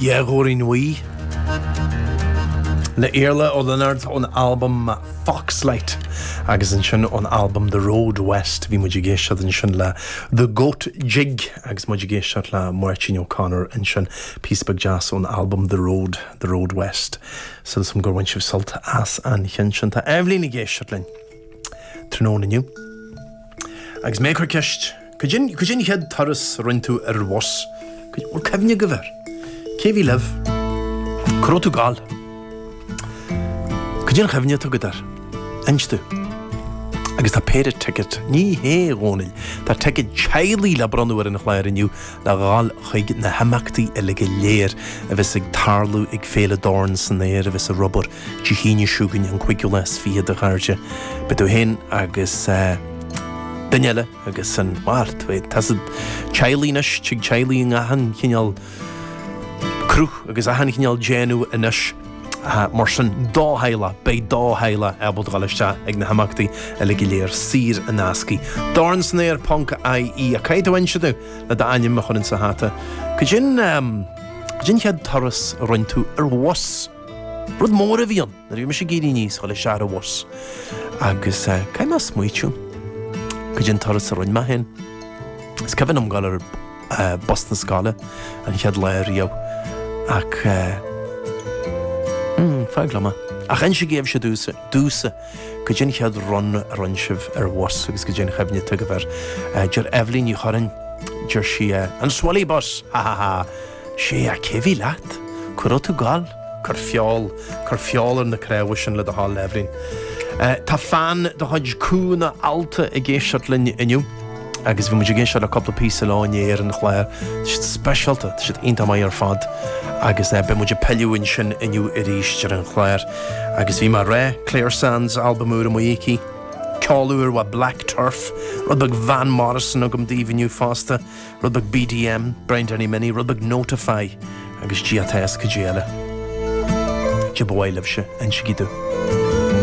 Dhá Ghabhairín Bhuí, le Iarla Ó Lionáird ón albam Foxlight agus ansin ón albam The Road West bhí muid ag éisteacht ansin le The Goat Jig agus muid ag éisteacht le Máirtín O'Connor ansin, píosa beag deas ón albam The Road, The Road West. Súil agam gur bhain sibh sult as an cheann sin. Tá Eibhlín ag éisteacht linn. tráthnóna inniu agus mé ag cur ceist, cad é an chéad turas a rinn tú ar bhus? Bhfuil cuimhne agaibh air? Cé bhí libh? Cá raibh tú ag gabháil? Cad é an chuimhne atá agat air? Inis domh. Agus tá péire ticket, ní hea, a Dhónaill, tá ticket teaghlaigh le bronnadh ar an chlár inniu le dhul chuig na himeachtaí uilig go léir a bheas ag tarlú ag Féile Dorn san Aer a bheas ar obair Dé hAoine seo chugainn an cúigiú lá is fiche a chairde. Beidh tú féin agus duine eile agus ansin bhuel tá a fhios agat, teaghlaigh anois, tig teaghlaigh in achan chineál cruth agus achan chineál déanamh anois. Mar sin do theaghlach, beidh do theaghlach ábalta dul isteach ag na himeachtaí uile go léir saor in aisce. Dornsanaer.ie ach caithfidh tú inse domh le d'ainm a chur insa hata. Cad é an chéad turas a rinn tú ar bhus. Rud mór a bhí ann nuair a bhí mise ag éirí aníos, dul siar ar an bhus agus caithfidh mé smaoitiú cad é an turas a rinne mé fhéin. Is cuimhin liom dhul ar bus na scoile an chéad lá riamh ach fág liom é. Ach insígí sibhse domhsa cad é an chéad run a rinne sibh ar bhus agus cad é an chuimhne atá agaibh air. Deir Eibhlín Ní Churraoin, deir sí an Swilly Bus! Ha ha ha. sea, cé a bhí leat? Cá raibh tú ag gabháil? Cuir feol, cuir feol ar na cnámha sin le do thoil, Eibhlín. Tá fan de chuid Cúl na h-Alta ag éisteacht linn inniu agus bhí muid ag éisteacht le cúpla píosa leo inné ar an chlár. Tá siad speisialta, tá siad iontach maith ar fad agus beidh muid ag pilleadh ansin inniu arís ar an chlár. Agus bhí mé ag rá, Clare Sands, albam úr amuigh aici, ceol úr ó Black Turf, rud beag Van Morrison agam daoibh inniu fosta. rud beag BDM, Brian Danny Minnie, rud beag Notify agus ag Dia atá a fhios cad é eile. Cad é ba mhaith libhse, insígí domh.